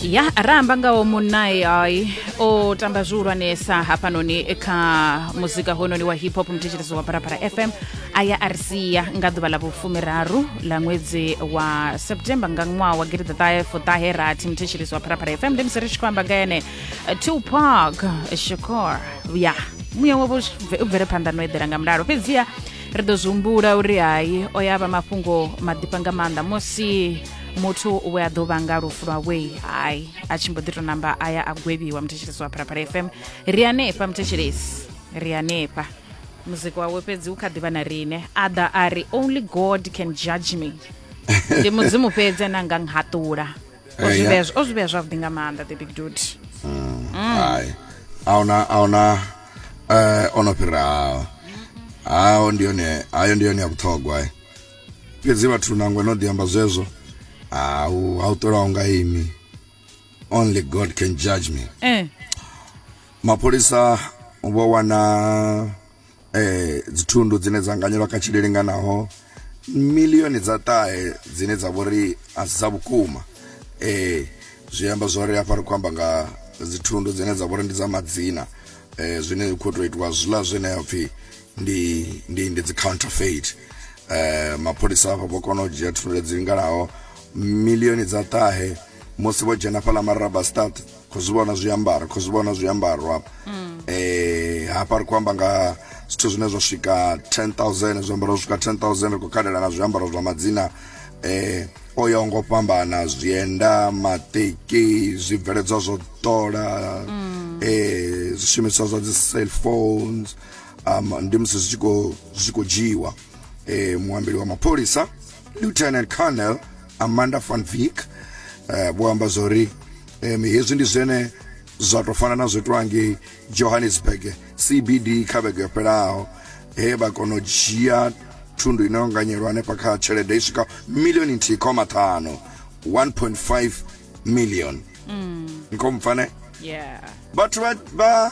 ya ramba ngawo munnae ai o tamba zwihulwanesa hafhanoni kha muzika hononi wa hip hop mthetsherezo wa parapara fm a ya a ri sia nga ḓuvha ḽa vhufumiraru ḽa ṅwedzi wa september nga ṅwaha wa gidi ḓaṱahe fuṱahe rathi mthetsherezo wa parapara fm ndi musi ri tshi khou amba nga ene tupac shakor ya muya wavho u bvele phanḓa no eḓela nga mulalo fhedziha ri ḓo zwi humbula uri hai o ya vha mafhungo maḓifha nga maanḓa musi muthu we a ḓo vhanga lufu lwa wei hai a tshi mbo ḓi to namba a ya a gwevhiwa muthetshelesi wa phalaphala fm ri hanefha muthetshelesi ri hanefha muzika wawe fhedzi u kha ḓivha na rine a ḓa a ri only god can judge me ndi mudzimu fhedzi ane anga nghaṱula o zwi vhea o zwi vhea zwavhuḓi nga maanḓa the big dude mm. hai ahuna ahuna eh ono fhiraho hayo ndi yone hayo ndi yone ya vhuṱhogwa eh. fhedzi vhathu nangwe no ḓi amba zwezwo ha u ha u ṱolaho nga imi only god can judge me eh mapholisa vho wana eh dzithundu dzine dza nganyelwa kha tshile linganaho milioni dza ṱahe dzine dza vhori a si dza vhukuma eh zwi amba zwori hafha ri khou amba nga dzithundu dzine dza vhori ndi dza madzina eh zwine zwi khou tou itiwa zwiḽa zwine ha pfhi ndi ndi ndi dzi counterfeit eh mapholisa avha vho kona u dzhia thundu dzi linganaho milioni dza ṱahe musi vho dzhena fhala maraba start kho zwi vhona zwiambaro kho zwi vhona zwiambaro hafha mm. eh hafha ri kho amba nga zwithu zwine zwa swika 10000 zwiambaro zwa swika 10000 ri kho kalela na zwiambaro zwa madzina eh o ya ngo fhambana zwienda mateki zwibveledzwa zwo ṱola mm. eh zwishumiswa zwa dzi cell phones um, ndi musi zwi tshi khou- zwi tshi khou dzhiiwa eh, muambeli wa mapholisa lieutenant colonel amanda van vick eh, vho amba zwa uri em, hezwi ndi zwene zwa tou fana na zwo itiwa ngei johannesburg cbd kha vhege yo fhelaho he vha kona u dzhia thundu ino nganyelwa hanefha kha tshelede i swika milioni nthihi khoma ṱhanu 1.5 million nkomupfane yeah vhathu vha- vha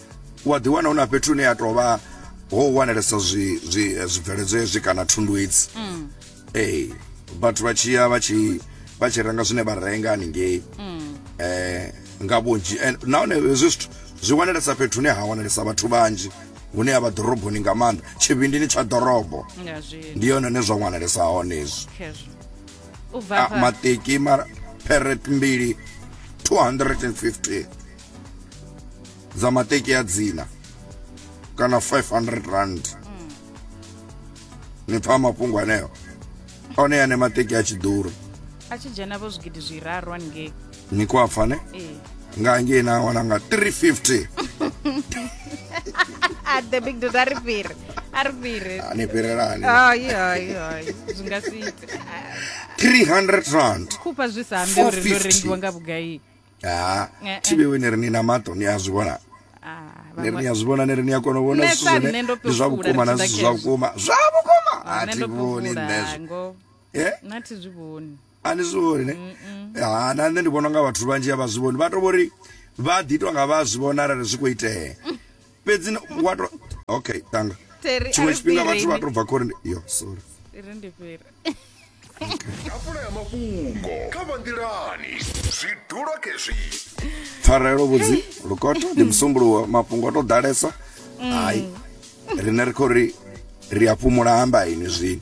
wa ḓiwana hu na fhethu hune ya tou vha ho wanalesa zwibveledzo hezwi kana thundu hedzi mm. ee vhathu vha tshi ya vha tshi vha tshi renga zwine vha renga haningei mm. eh nga vhunzhi nahone hezwi zwithu zwi wanalesa fhethu hune ha wanalesa vhathu vhanzhi hune avha ḓoroboni nga maanḓa tshivhindini tsha ḓorobo ndi yone ne zwa wanalesa hone hezwi ah, mateki ma peret mbili 250 dza mateki ya dzina kana 500 rand mm. ni pfa mafhungo aneo one ane mateki a tshi ḓura a tshi dzhena vho zwigidi zwiraru haningei ni khou a pfa ne ee nga hangei na wana nga 350 a the big dude a ri fhiri a ri fhiri a ni fhirelani ai ai ai zwi nga si ite 300 rand khupha zwi sa ambe uri ndo rengiwa nga vhugai ha eh, eh. thivhewe ni ri ni na maṱo ni a zwi vhona ah, ni ri ni a zwi vhona ni ri ni a kona u vhona zwithu zwine ndi zwa vhukuma na zwithu zwa vhukuma zwa vhukuma ah, a thi vhoni nṋezwo eh? na thi zwi vhoni a ni zwi vhoni ne ha na nṋe ndi vhona nga vhathu vhanzhi a vha zwi vhoni vha to vhori vha ḓi itwa nga vha zwi vhona arali zwi khou itea fhedzi wa to okay tanga Terry, tshiṅwe ari tshifhinga vhathu fhireni. vha to bva khori ndi- yo sorry ri ndi fhira tafula ya mafhungo kha vha nḓilani zwi dula khezwi pfarelo vhudzi lukoto ndi musumbuluwo mafhungo o to ḓalesa hayi rine ri khou ri ri a fhumula amba ini zwino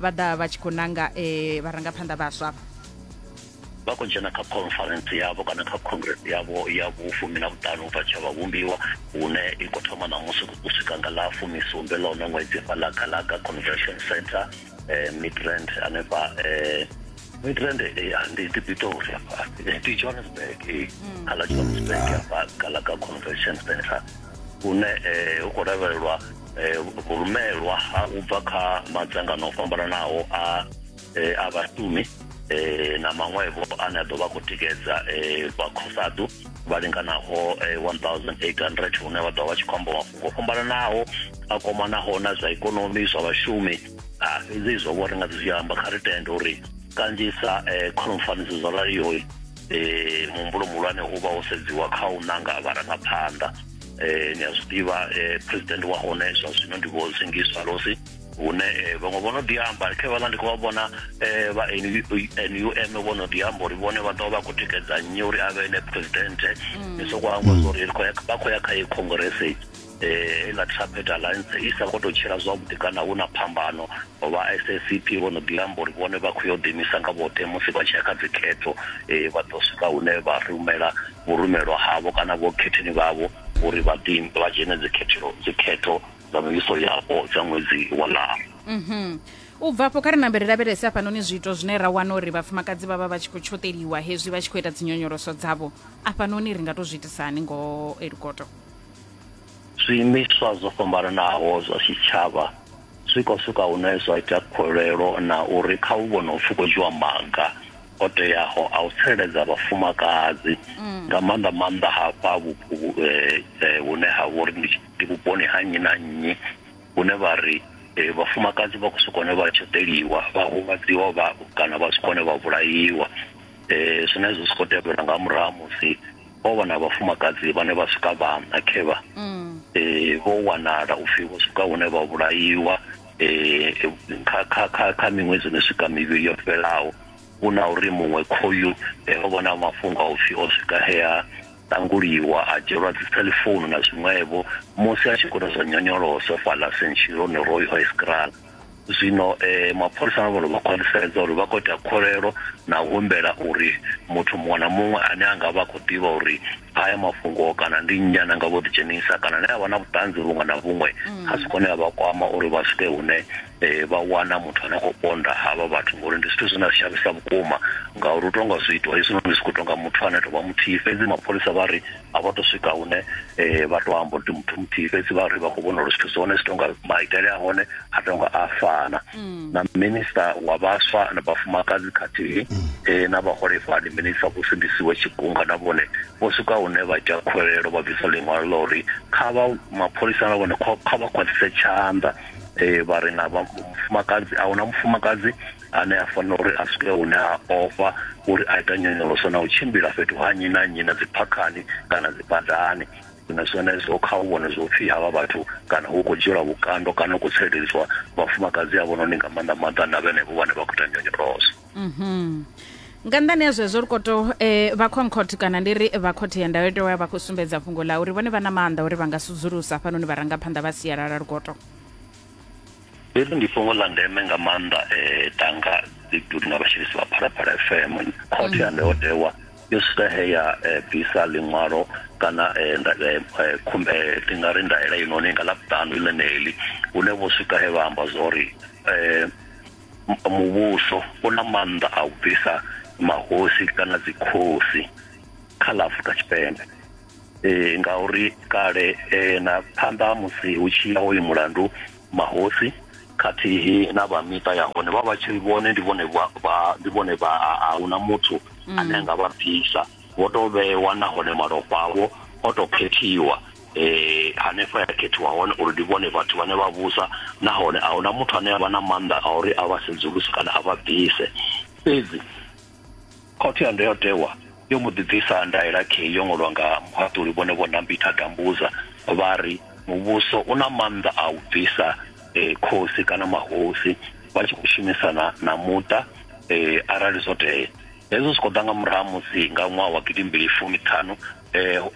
vha ḓa vha tshi khou nanga eh, vharangaphanḓa vhaswa vha vha khou dzhena kha conference yavho kana kha congress yavho ya vhufumi na vhuṱanu ubva tsha vhavhumbiwa hune i khou thoma ṋamusi u swika nga ḽa fumisumbe ḽa uno ṅwedzi fha ḽa galaga convention center eh, midrand hanefha eh, midrand eh, ndi ndi pitori afha Eh, ndi johannesburg eh, mm. kha ḽa johannesburg afha galaga convention center hune eh, hu khou lavhelelwa eh, vhurumelwa ha u bva kha madzangano o fhambananaho a eh, a vhashumi eh, na maṅwevho ane a ḓo vha khou tikedza eh, vhakhosadu vha linganaho eh, 1800 hune vha ḓo vha tshi khou amba mafhungo o fhambananaho a kwamanaho na zwa ikonomi zwa vhashumi Ah, fhedzi izwo vho ri nga zwi amba kha ri tende uri kanzhisa eh, khonfaniso zwo raliho eh, muhumbulo muhulwane u vha wo sedziwa kha u nanga vharangaphanḓa eh ni a zwi ḓivha eh, president wa hone zwa zwino ndi vho sengiswa losi hune eh, vhaṅwe vho no ḓi amba khe vhala ndi khou vha vhona eh, vha num vho no ḓi amba uri vhone vha ḓo vha khou tikedza nnyi uri a vhe ne president mm. ni sokou amba mm. uri vha khou ya kha ye congresse eh la trapet alliance i sa khou tou tshila zwavhuḓi kana hu na phambano vha sscp vho no ḓi amba uri vhone vha khou yo ḓiimisa nga vhoṱhe musi vha tshi ya kha dzikhetho um vha ḓo swika hune vha rumela vho rumelwa havho kana vho khetheni vhavho uri vha ḓi vha dzhene dzikhetho dzikhetho dza mivhiso yapo dza ṅwedzi wa ḽara mhm. u bva afho kha ri nambe ri lavhelese afhanoni zwiito zwine ra wana uri vhafumakadzi vha vha vha tshi khou tshoṱeliwa hezwi vha tshi khou ita dzinyonyoloso dzavho afhanoni ri nga to zwi itisani ngo elukoto Zwiimiswa zwo fhambananaho zwa tshitshavha zwi khou swika hune zwa ita khuwelelo na uri kha hu vhone upfi khou dzhiwa maga o teaho a u tsireledza vhafumakadzi mm. nga maanḓa maanḓa hafha vhupo eh, eh, hune ha vhori ndi vhuponi ha nnyi na nnyi hune vha ri eh, vhafumakadzi vha khou swika hone vha tshoḓeliwa vha huvhadziwa vha kana vha swika hone vha vhulaiwa um zwine zwi si khou tevhela nga murahu musi ho vha na vhafumakadzi vhane vha swika vhaṋa khevha mm. eh, vho wanala u pfhi vho swika hune vha vhulaiwa eh, kha kha kha kha miṅwedzi no swika mivhili yo fhelaho hu na uri muṅwe khoyu eh, ho vha na mafhungo a u pfhi o swika hea ṱanguliwa a dzhielwa dzi cellphone na zwiṅwevho musi a tshi khou ita zwa nyonyoloso fhala sentshironi roy hoiscral zwino eh, mapholisa a vholo vha khwaṱhisedza uri vha khou ita kholelo na u humbela uri muthu muṅwe na muṅwe ane a nga vha a khou ḓivha uri haya mafhungo kana ndi nnyi ana nga vho ḓidzhenisa kana ne a vha na vhuṱanzi vhuṅwe na vhuṅwe mm. a si kone a vha kwama uri vha swike hune um vha wana muthu ane a khou ponda havha vhathu ngori ndi zwithu zwine a shavhisa vhukuma ngauri u tonga zwi itwa hezwinoni zwi khou tonga muthu ane a tou vha muthihi fhedzi mapholisa vha ri a vha to swika hune eh, vha to amba uri muthu muthihi fhedzi vha ri vha khou vhona uri zwithu zwone zwi tonga maitele a hone a tonga a fana mm. na minista wa vhaswa na vhafumakadzi khathihi mm. eh, na vhaholefhali minista vho sindisiwe tshigunga na vhone vho swika hune vha ita khwelelo vha bvisa ḽiṅwalo ḽa uri kha vha mapholisa na vhone kha vha khwaṱhise tshanḓa eh vha ri na mufumakadzi a huna mufumakadzi ane a fanela uri a swike hune a ofha uri a ita nyonyoloso na u tshimbila fhethu ha nnyi na nnyi na dziphakhani kana dzibadani na zwenezwo kha u vhone zwo pfhi havha vhathu kana hu khou dzhielwa vhukando kana hu khou tsireledzwa vhafumakadzi avhononi nga maanḓa maanḓa na vhenevho vhane vha khou ita nyonyoloso mhm. nga nnḓani ya zwezwo ri koto um eh, vha concord kana ndi ri vha khothe ya ndayotewa ya vha khou sumbedza fhungo ḽa uri vhone vha na maanḓa uri vha nga sudzulusa hafhanoni vharangaphanḓa vha sialala lukoto hezwi ndi fhungo ḽa ndeme nga maanḓa um tanga ḓidudu na vhashumisi vha phalaphala fm khothe ya ndayotewa yo swika he ya eh, bvisa ḽiṅwalo kana eh, eh, ndi nga ri ndaela inoni nga ḽavhuṱanu i ḽeneli hune vho swika he vha amba zwa uri um muvhuso u na maanḓa a u bvisa mahosi kana dzikhosi kha ḽa afrika tshipembe eh, ngauri kale eh, na phanḓa musi hu tshi ya hoyu mulandu mahosi khathihi na vha miṱa ya hone vha vha tshi vhone ndi vhone vha- vha- ndi vhone vha a hu na muthu ane a nga vha bvisa vho tou vhewa nahone malofha avho o tou khethiwa eh hanefho ya khethiwa hone uri ndi vhone vhathu vhane vha vhusa nahone a hu na muthu ane a vha na maanḓa a uri a vha sedzuluse kana a vha bvise fhedzi Khothe ya Ndayotewa yo mbo ḓi bvisa ndaela khei yo ṅwalwa nga muhaṱuli vhone Vho Nambitha Gambuza vha ri muvhuso u na maanḓa a u bvisa khosi kana mahosi vha tshi khou shumisana na muṱa arali zwo tea. Hezwo zwi khou ḓa nga murahu ha musi nga ṅwaha wa gidi mbili fumi ṱhanu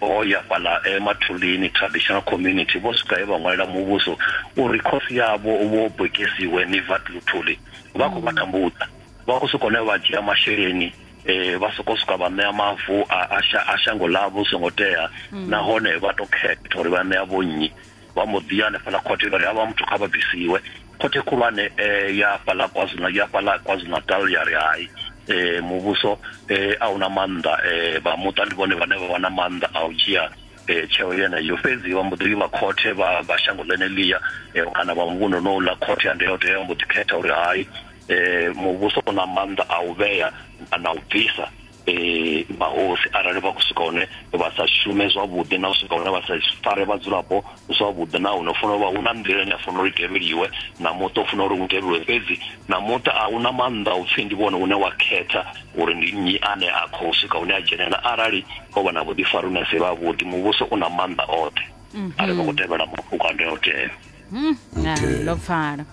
ho ya fhaḽa Mathulini Traditional Community vho swika he vha ṅwalela muvhuso uri khosi yavho Vho Bokisiwe Nivat Luthuli vha khou vha tambudza. vha khou sokou ne vha dzhia masheleni eh vha soko swika vha ṋea mavu a shango ḽavho songo tea mm. nahone vha to khetha uri vha ṋea vho nnyi vha mbo ḓi ya hanefhaḽa khothe vha ri havha muthu kha vha bvisiwe khothe khulwane eh, ya fhaḽa kwazulu ya fhaḽa kwazulu natal ya ri hai eh muvhuso eh a una maanḓa eh vha muṱa ndi vhone vhane vha vha na maanḓa a u dzhia eh tsheo yeneyo fhedzi vha mbo ḓi vha khothe vha vha shango ḽeneḽia eh, kana vha muvhuno no ḽa khothe ya ndayotewa mbo ḓi khetha uri hai eh, muvhuso u na maanḓa a u vhea na u bvisa eh, mahosi arali vha khou swika hone vha sa shume zwavhuḓi na u swika hone vha sa fare vhadzulapo zwavhuḓi na hune funa uvha hu na nḓila ine a funa uri tevheliwe na muṱa u funa uri u tevheliwe fhedzi na muṱa a una maanḓa u pfhi ndi vhone une wa khetha uri ndi nnyi ane a khou swika hune a dzhenelela arali o vha na vhuḓifari une si vha vhuḓi muvhuso u na maanḓa oṱhe mhm. arali vha khou tevhela mafhungo a ndayotewa Hmm, ah, Okay. ndo pfala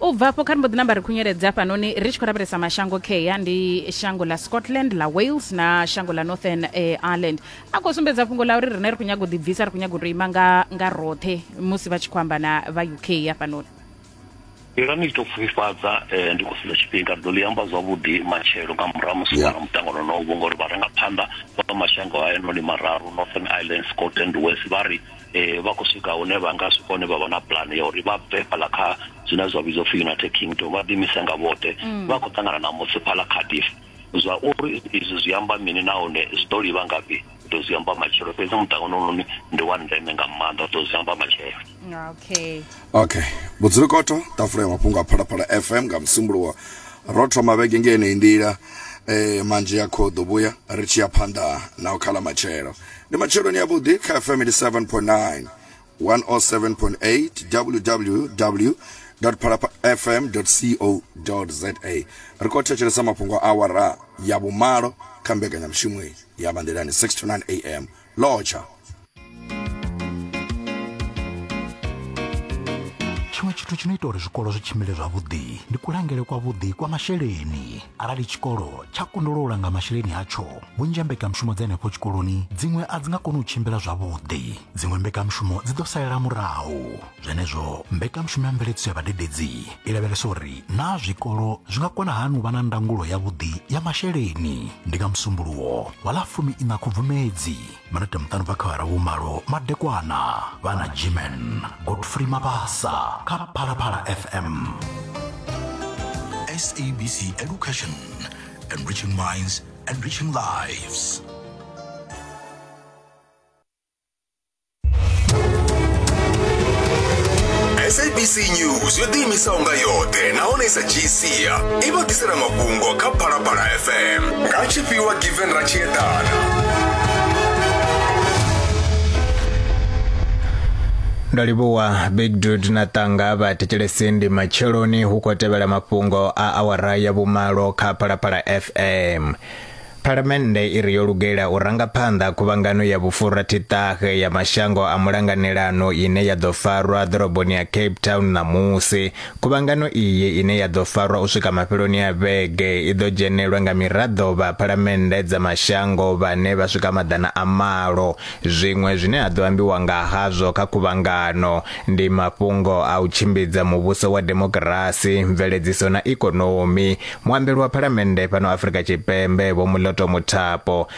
u bva afho kha ri mbo ḓi namba ri khunyeledza hafhanoni ri tshi khou lavhelesa mashango kea ndi shango ḽa scotland ḽa wales na shango ḽa northern eh, ireland a khou sumbedza fhungo ḽa uri rine ri khou nyaga u ḓibvisa ri khou nyaga u tou ima nga, nga roṱhe musi vha tshi khou amba na vha uk hafhanoni Iran i tshi tou pfufhifhadza eh, ndi khou sedza tshifhinga ri ḓo ḽi amba zwavhuḓi matshelo nga murahu musi Yeah. yeah. mutangano no vho ngori vharangaphanḓa vha mashango hayanoni mararu northern ireland scotland west vha ri eh vha khou swika hune vha nga swika hune vha vha na pulane ya uri vha bve fhaḽa kha zwine zwa vhidzwa upfhi united kingdom vha ḓimise nga vhoṱhe mm. vha khou ṱangana na musi fhaḽa cardiff zwa uri izwi zwi amba mini nahone zwi ḓo livha ngafhi ḓo zwi amba matshelo fhedzi muṱangano unoni ndi wa ndeme nga maanḓa ḓo zwi amba matshelo okay okay vhudzulukoto tafula ya mafhungo a phalaphala fm nga musimbuluwa ro thoma vhege ngeneyi nḓila eh manzhi ya khoḓo vhuya ri tshi ya phanḓa na u khala matshelo ndi matsheloni avhuḓi kha fm 87.9 107.8 www phalapafm co za ri khou thetshelesa mafhungo a awara ya vhumalo kha mbekanyamushumo ya manḓilani 6 to 9 am lotsha tshiṅwe tshithu tshi no ita uri zwikolo zwi tshimbile zwavhuḓi ndi kulangele kwavhuḓi kwa masheleni arali tshikolo tsha kundelwa u langa masheleni atsho vhunzhi ha mbekanyamushumo dza henefho tshikoloni dziṅwe a dzi nga koni u tshimbila zwavhuḓi dziṅwe mbekanyamushumo dzi ḓo salela murahu zwenezwo mbekanyamushumo ya mveledziso ya vhadededzi i lavhelesa uri naa zwikolo zwi nga kona hani u vha na ndangulo yavhuḓi ya masheleni ndi nga musumbuluwo wa ḽa fumi ina khubvumedzi manete muṱanu bva khawara vhumalo madekwana vha na gmen godfrey mabasa kha phalaphala fm sabc education enriching minds enriching lives sabc news yo ḓiimisaho nga yoṱhe nahone i sa dzhiisia i vha ḓisela mafhungo kha phalaphala fm ka tshifhiwa given ra tshi eḓana ndo livhuwa big dud na tanga vha thetshelesi ndi matsheloni hu khou tevhela mafhungo a awara ya vhumalo kha phalaphala fm phalamennde i ri yo lugela u ranga phanḓa khuvhangano ya vhufurathitahe ya mashango a mulanganelano ine ya ḓo farwa ḓoroboni ya cape town ṋamusi Khuvhangano iyi ine ya ḓo farwa u swika mafheloni a vhege i ḓo dzhenelwa nga miraḓo vha phalamennde dza mashango vhane vha swika maḓana a malo. Zwiṅwe zwine ha ḓo ambiwa nga hazwo kha khuvhangano ndi mafhungo a u tshimbidza muvhuso wa demokirasi, mveledziso na ikonomi. Muambeli wa phalamennde fhano Afrika Tshipembe Vho Moloto Mothapo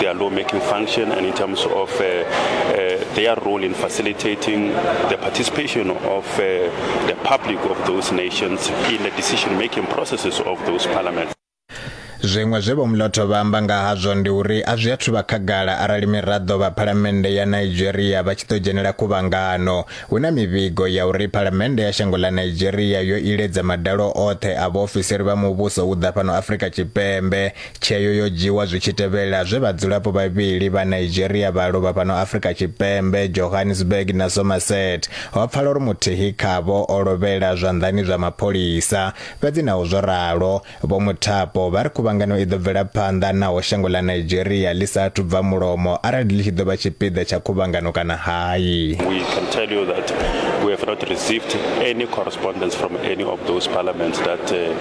their lawmaking function and in terms of uh, uh, their role in facilitating the participation of uh, the public of those nations in the decision-making processes of those parliaments. zwiṅwe zwe vho muloto vha amba nga hazwo ndi uri a zwi athu vha khagala arali miraḓo vha phalamennde ya nigeria vha tshi ḓo dzhenela khuvhangano hu na mivhigo ya uri phalamennde ya shango ḽa nigeria yo iledza madalo oṱhe a vhaofisiri vha muvhuso u ḓa fhano afrika tshipembe Tsheo yo dzhiwa zwi tshi tevhela zwe vhadzulapo vhavhili vha Nigeria vha lovha fhano Afrika Tshipembe, Johannesburg na Somerset. Ho pfala uri muthihi khavho o lovhela zwanḓani zwa mapholisa. Fhedzi naho zwo ralo, Vho Muthapo vha ri khuvhangano i ḓo bvela phanḓa naho shango ḽa Nigeria ḽi sa athu bva mulomo arali ḽi tshi ḓo vha tshipiḓa tsha khuvhangano kana hai. We can tell you that we have not received any correspondence from any of those parliaments that uh,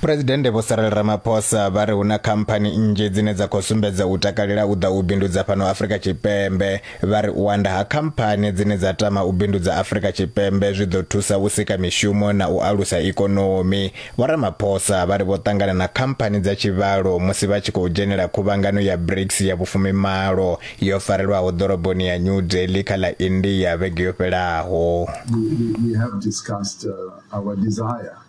Presidennde Vho Cyril Ramaphosa vha ri hu na khamphani nnzhi dzine dza khou sumbedza u takalela u ḓa u bindudza fhano Afrika Tshipembe. Vha ri u anda ha khamphani dzine dza tama u bindudza Afrika Tshipembe zwi ḓo thusa u sika mishumo na u alusa ikonomi. Vho Ramaphosa vha ri vho ṱangana na khamphani dza tshivhalo musi vha tshi khou dzhenela khuvhangano ya BRICS ya vhufumimalo yo farelwaho ḓoroboni ya New Delhi kha ḽa India vhege yo fhelaho. We, we, we have discussed, uh, our desire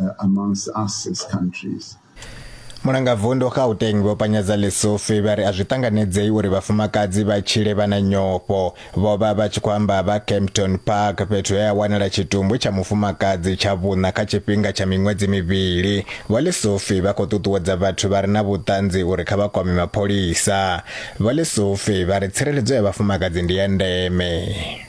uh, amongst us as countries. mulangavundu gauteng vho panyadza lesofi vha ri a zwi ṱanganedzei uri vhafumakadzi vha tshile vha na nyofho vho vha vha tshi khou amba vha campton park fhethu he a wanala tshitumbu tsha mufumakadzi tsha vhuṋa kha tshifhinga tsha miṅwedzi mivhili vho lesofi vha khou ṱuṱuwedza vhathu vha re na vhuṱanzi uri kha vha kwame mapholisa vho lesofi vha ri tsireledzo ya vhafumakadzi ndi ya ndeme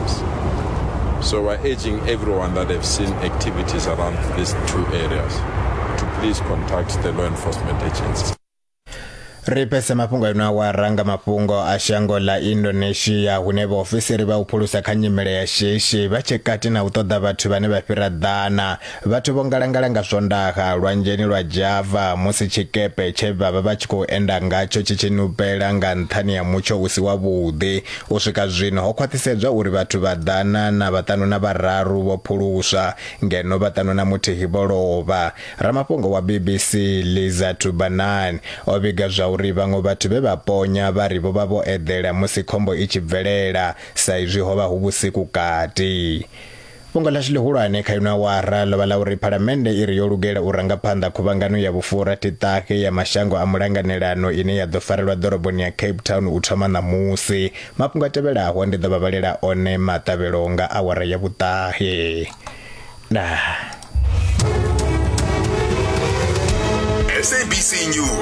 homes. So we're urging everyone that they've seen activities around these two areas to please contact the law enforcement agencies. ri pese mafhungo ino awara nga mafhungo a shango ḽa indonesia hune vhaofisiri vha u phulusa kha nyimele ya shishi vha tshe kati na u ṱoḓa vhathu vhane vha fhira ḓana Vhathu vho ngalangala nga swondaha lwanzheni lwa Java musi tshikepe tshe vha vha vha tshi khou enda ngatsho tshi tshi nupela nga nṱhani ha mutsho u si wavhuḓi. U swika zwino, ho khwaṱhisedzwa uri vhathu vha ḓana na vhaṱanu na vhararu vho phuluswa, ngeno vhaṱanu na muthihi vho lovha. Ramafhungo wa BBC Liza Tubanan o vhiga zwauri vhaṅwe vhathu vhe vha ponya vha ri vho vha vho eḓela musi khombo i tshi bvelela saizwi ho vha hu vhusiku kati. Fhungo ḽashu ḽihulwane kha ino awara ḽo vha ḽa uri Phalamennde i ri yo lugela u ranga phanḓa khuvhangano ya vhufurathi-ṱahe ya mashango a mulanganelano ine ya ḓo farelwa ḓoroboni ya Cape Town u thoma ṋamusi. Mafhungo a tevhelaho ndi ḓo vha vhalela one maṱavhelo nga awara ya vhuṱahe. Ndaa. SABC News.